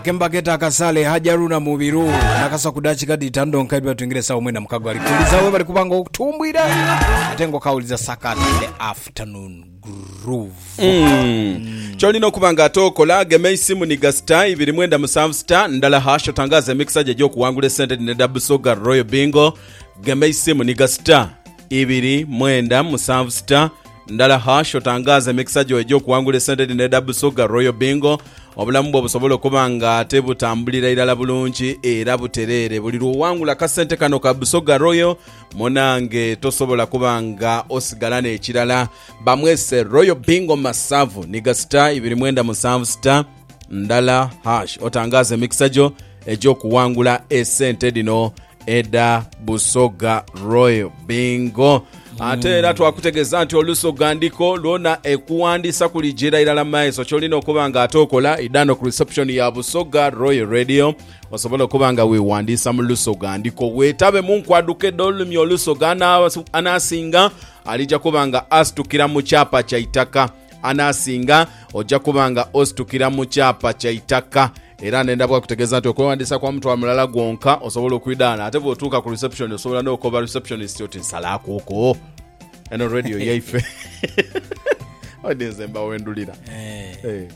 akemba keta akasale haji aruna mubiru nakasa ku dakika dhitano donka edwa tuingire sawa mwena mukago ali kuuliza we bali kubanga okutumbwira ate nga okawuliza sakat the afternoon groove kyolina okuba nga ate okola gema eisimu ni gasita ibiri mwenda musanvu sita ndala hash otangaza emikisa gye egyokuwangula esente dhino edha busoga royal bingo gema eisimu ni gasita ibiri mwenda musanvu sita Ndala hash otangaaze emikisa gyo egy'okuwangula esente dhino edha Busoga Royal Bingo, obulamu bwo busobole okuba nga ate butambulira irala bulungi era butereere buli lw'owangula akasente kano ka Busoga Royal. Munange tosobola kuba nga osigala n'ekirala. Bamwese Royal Bingo Masavu niga star ibiri mwenda musanvu star ndala hash otangaaze emikisa gyo egy'okuwangula esente dhino edha Busoga Royal Bingo. Ate era twakutegeeza nti olusoga ndiko lwona ekuwandiisa kuligyira irala maiso kyolina okuba nga ate okola idhano ku reception ya Busoga Royal Radio osobole okuba nga wewandiisa mu lusoga ndiko wetabe mu nkwaduka edh'olulimi olusoga. Ana- Anaasinga alija kuba nga asitukira mu kyapa kya itaka. Anaasinga oja kuba nga ositukira mu kyapa kya itaka. Era nenda bwakutegeeza nti okwewandiisa kwa mutwalo mulala gwonka osobola okwidhaana ate bwotuuka ku reception osobola n'okoba receptionist oti nsalaakuuko eno radio yaife. Odi nze mba wendulira. Eh,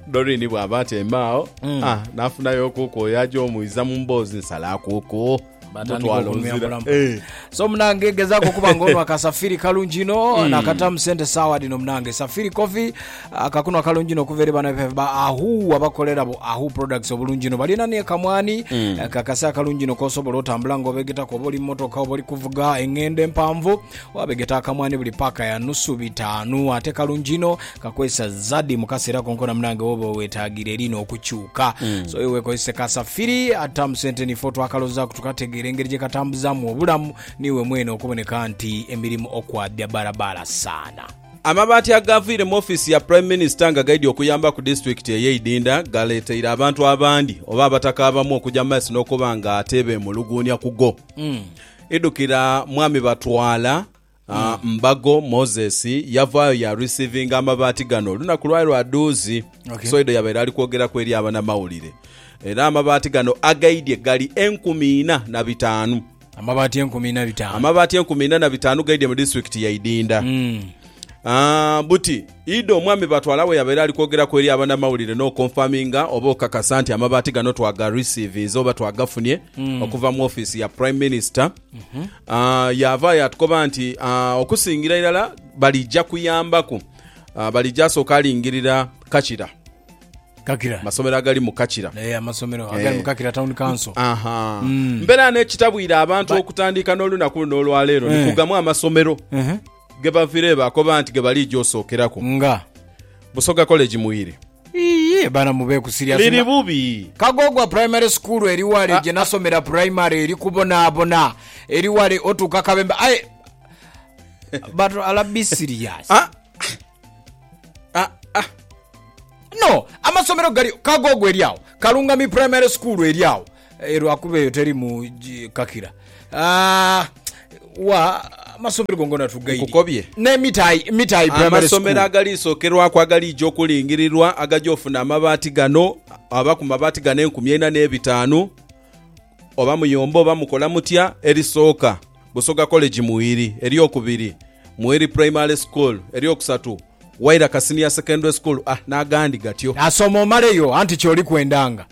Doreen bw'aba atyaimeagho, ah, naafunayo okuuku oyo aja omwiza mu mboozi nsalaakuuko. batandika okunuyambula mpola eh. so munange gezaako okuba nga onwa kasafiri kalungi ino mm. nakatamu sente saawa dino munange safiri coffee akakunwa ah, kalungi ino okuva eri bana baffe ba ahu abakolera bu ahu products obulungi ino balina nekamwani mm. kakase akalungi ino kosobola otambula nga obegetaku oba oli mumotoka oba oli kuvuga engendo empanvu Waabegeta akamwani buli paaka ya nusu bitaanu. Ate kalungi inho, kakozesa zadi mu kaseera konkona munange woba owetaagira erina okukyuka. So iwe kozese ka safiri, ata mu sente niife otwakalozaaku tukategeera engeri gye katambuzaamu obulamu niiwe mwene okuboneka nti emirimu okwabya balabaala saana. Amabaati agaviire mu ofiisi ya Prime Minister nga gaidhi okuyamba ku disitulikiti eye Idinda galeeteire abantu abandi oba abataka abamu okuja mu maiso n'okuba nga ate beemuluguunya ku go. Idhukira mwami batwala ah, mbago Moses yavaayo ya receivinga amabaati gano olunaku lwali lwa dhuuzi Okay. Soido yabaire ali kwogeraku eri abanamawulire era amabaati gano agaidye gali enkumi ina na bitaanu Amabaati enkumi na bitaanu. amabaati enkumi ina na bitaanu gaidye mu disitulikiti ya Idinda Mm. Ah, buti Idho omwami b'atwala we yabaire ali kwogeraku eri abanamawulire n'okonfaminga oba okakasa nti amabaati gano twagarisiivinze oba twagafunye okuva mu ofiisi ya Prime Minister. Ah, yaava yaatukoba nti ah, okusingira irala balija kuyambaku ah, balija asooke alingirira Kakira, Kakira. amasomero agali mu Kakira. Eh, amasomero Eh. agali mu Kakira Town Council. Aha. Mbeera n'ekitabwira abantu okutandiika n'olunaku luno olwaleero ni Eh. kugamu amasomero. Ehe. Ghe bavire baakoba nti ghe baliija osookeraku. Nga. Busoga College mu Iri. Iye bana mu beeku serious nga. Liri bubi. Kagoogwa Primary School eri wale gye nasomera primary eri kubonaabona eri wale otuuka Kabembe aye But ala be serious. Ah, ah. No, amasomero gali kagogo eri awo. Kalungami primary school eri awo. Eh, lwakuba eyo teri mu gi- kakira. Ah, wa amasomero gongona tugaidi. Nkukobye. Ne mitai mitai primary school. amasomero agaliisokerwaku agaliija okulingirirwa agaja ofuna amabaati gano aba ku mabaati gano enkumi eina n'ebitaanu oba muyomba oba mukola mutya erisooka Busoga College Muiri, ery'okubiri, Muiri Primary School, ery'okusatu, Wairaka Senior Secondary School, a n'agandi gatyo. Asoma omaleyo anti ky'oli kwendanga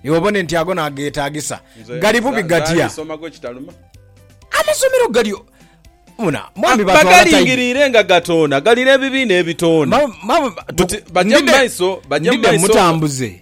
iwe obone nti ago n'ageetaagisa. Nze Gali bubi nze gatya? ali soma gwe kitaluma. Amasomero gali o. Muna, mwami batwala tayi. Bagalingiriire nga gatoona, gali n'ebibiina ebitoona. Ma, ma, tu, Buti, bajja mu ndidde, maiso, bajja mu ndidde maiso. mutambuze.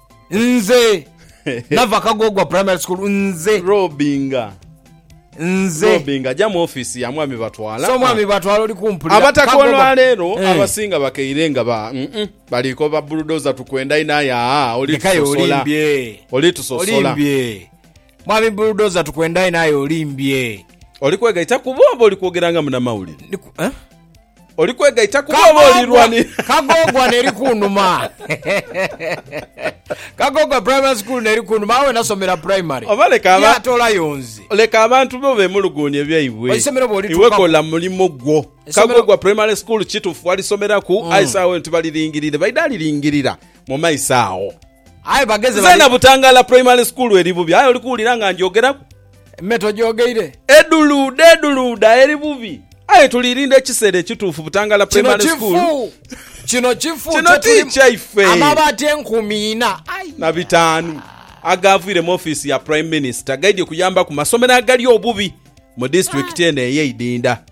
nze nava kagogwa primary school nze robinga nze robinga ajja mu office ya mwami batwala so mwami batwala oli kumpulira abataka olwaleero eh. abasinga bakeire nga ba mm -mm, baliko ba bulldozer tukwenda inaye aa oli tusosola oli tusosola mwami bulldozer tukwenda inaye olimbye oli kwegaita kubo oba oli kwogera nga munamawulire eh? Oli kwegaita kubo oba oli lwani? Kagogwa neri kunuma. Kagogwa primary school neri kunuma awe nasomera primary. Oba leka aba. Ya tolayo nze. Leka abantu bo bemuluguunye byaibwe. Isomero bwoli tuka. Iwe kola mulimo gwo. Kagogwa primary school kitufu walisomera ku mm. aisa awe nti balilingirire baida alilingirira mu maisa awo. Aye bageze bali. Zena butangala primary school eri bubi. Aye oli kuwulira nga njogeraku. Me togyogeire. Edhuluudha edhuluudha eri bubi. Aye tulirinda ekiseera ekituufu Butangala Primary School. Kino kifu. Kino kifu. Kino ti kyaife. Amabaati enkumi ina aye. Na bitaanu agaavwire mu ofiisi ya Prime Minister gaidhye kuyamba ku masomero agali obubi mu disitulikiti eno eye Idinda.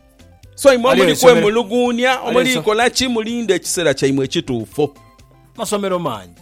So imwe omuli kwemuluguunia, omuli kola ki, mulinde ekiseera kyaimwe ekituufu. Masomero mangi.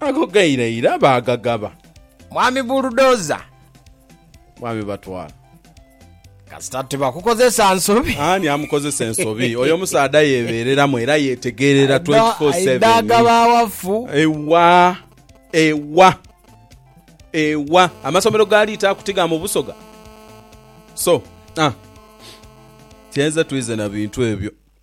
Ago gairaira baagagaba. Mwami Buldoza. Mwami Batwala. Kasita tibakukozesa nsobi. Ani amukozesa ensobi? Oyo omusaadha yeebeereramu era yeetegeerera 24, 7. Aidha agaba awafu. Ewa, ewa, ewa. Amasomero ga Liitaaku ti ga mu Busoga? So, ah, kyenze twize na bintu ebyo.